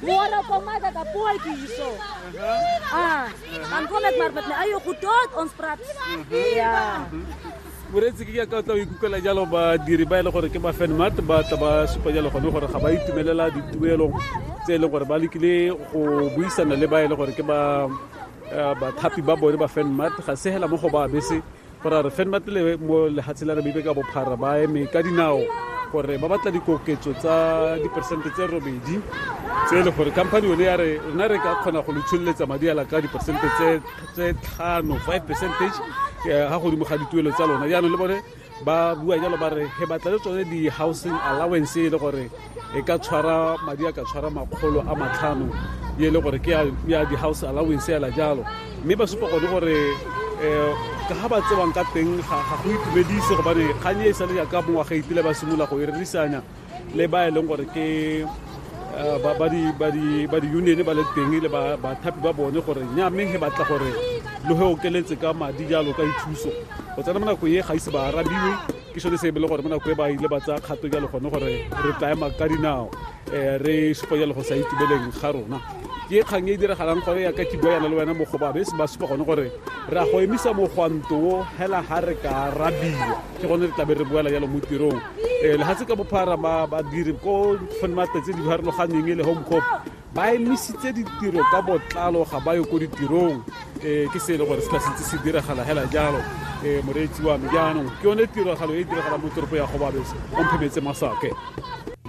Môre kom maar dat 'n pootjie hierso. Ah, dan kom ek maar met my eie goed tot ons praat. Ja. Môre se ke ka tla ikuka la jalo ba diri ba ile gore ke ba fan mat ba ta ba supa jalo go gore ga ba itumelela dituelo tse ile gore ba lekile go buisana le ba ile gore ke ba eh, bathapi ba bone ba fan mat ga se hela mo go ba bese gore a re fenma pele mo lehatshe la namibe ka bophara ba eme ka dinao gore ba batla dikoketso tsa diperesente tse robedi tse e le gore company yone ya re rona re ka kgona go letsholeletsa madi ala ka diperesente tse tlhano five percentage eh, ga godimo ga dituelo tsa lona jaanong le bone ba bua jalo ba re he batla le tsone di-housing allowance e le gore e ka tshwara madi a ka tshwara makgolo a matlhano e le gore ke ya di-house allowance ela jalo mme ba supa gone gore um ka ga ba tsewang ka teng ga go itumedise gobane kgang e e sale jaaka mongwaga itile ba simolola go e rerisanya le ba e leng gore ke eh, ba di-union ba le teng le bathapi ba bone gore nya mme he batla gore lo he okeletse ka madi jalo ka dithuso go tsena mo nakong e ga ise ba arabiwe ke sone se e bele gore mo nako e ba ile ba tsaya kgato jalo gone gore re tla ema ka dinao um re supa jalo go sa itumeleng ga rona ke kgang e e diragalang gore ya ka ke bua yana le wena mogobabe se ba supa gone gore re a go emisa mogwanto o hela ga re ka rabiwa ke gone re tlabe re boela jalo mo tirong um lehatshe ka bophara badiri ko matsatsi di farologaneng e le home cop ba emisitse ditiro ka botlalo ga ba yo ko ditirong um ke se e le gore se ka sentse se diragala hela jalo um moreetsi wa me jaanong ke yone tiragalo e e diragalang mo toropo ya gobabese o mphemetse masake